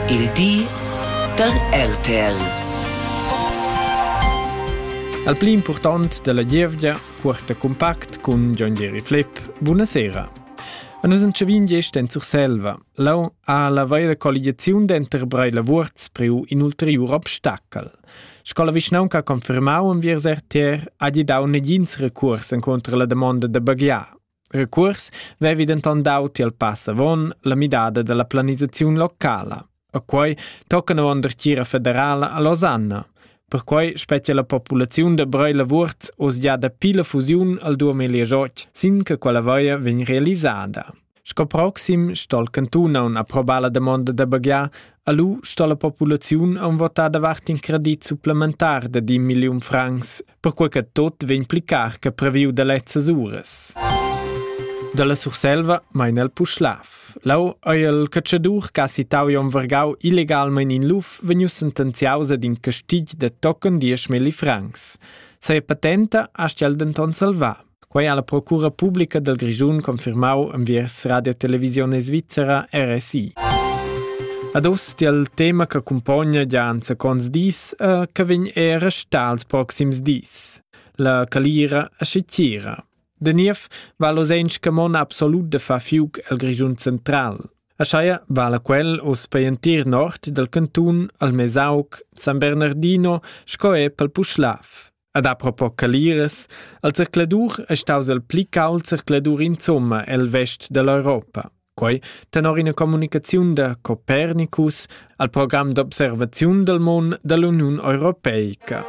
Il di da RTL. Al pli important dalla gievgia porta compact cun John Jerry Flip. Buonasera. A nus entschavin gest en Surselva. Lau ha la vera colligiaziun denter Breila Wurz preu in ulteriur obstacel. Sco la vischnaunca ha confermau enviers RTR ha gi dau negins recurs encontro la damonda da baghiar. Recuors vevi denton dau tiel pass avon la midada dalla planisaziun locala. A quei toccana avon dertgira federala a Losanna. Perquei spetga la populaziun da Brei Lavurt oz gia dapi la fusiun al 2018 sin che quella vaia vegn realisada. Sco proxim stol cantun aun approbar la demonda da baghiar, alu sto la populaziun aun votar davart in credit supplementar de 10 milliun francs perquai che tot vegn pli car che previu da lezzas uras. Dalla Surselva mein el Puschlav. Lau ei il catschadur che ha citau Jon Vergau illegalmein in luf vegnius sentenziaus ad in castigl de tochen dieschmilli francs. Sa patenta astgel denton salvar. Quei ha la procura publica dal Grischun confirmau enviers Radio Televisione Svizzera RSI. Ad oz il tema che accumpogna già anzaconts dis e che vegn er restar els proxims dis. La calira a Scicira. De Niev va l'osench che mon absolut de fa fiuc el Grischun central. A Schaia vala quel os per entir nord del cantun al Mesauc, San Bernardino, sco e pel Puschlav. Ad apropos Caliras, al zercladur è staus il pli cauld zercladur insomma el vest dell'Europa. Quei tenor ina communicaziun da Copernicus al program d'observaziun del mon dell'Uniun Europeica.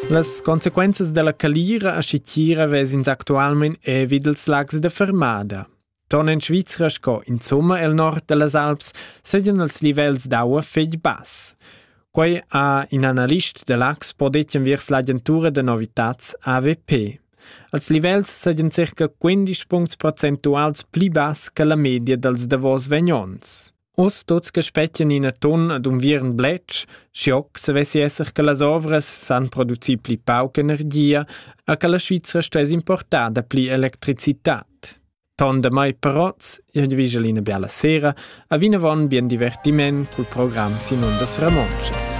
Las consequenzas della calira a Scicchira vesins actualmein evid ils lags de Fermada. Ton en Svizra sco insumma el nord dallas Alps seigien els livels d'aua fetg bass. Quei ha in analist da l'Axpo detg viers l'agentura da novitats AVP. Als livels seigien circa 15 puncts procentuals pli bass che la media dals davos vegnons. Us tuts che spettan ina ton ad unviern bletsch, schiocc se vessi esser che las ovras san producir pli pauc energia e che la Svizra stuess importar da pli electricitat. Ton da mai parots, io vigel ina biala sera, a vinavon bien divertiment col program Simon das Ramonches.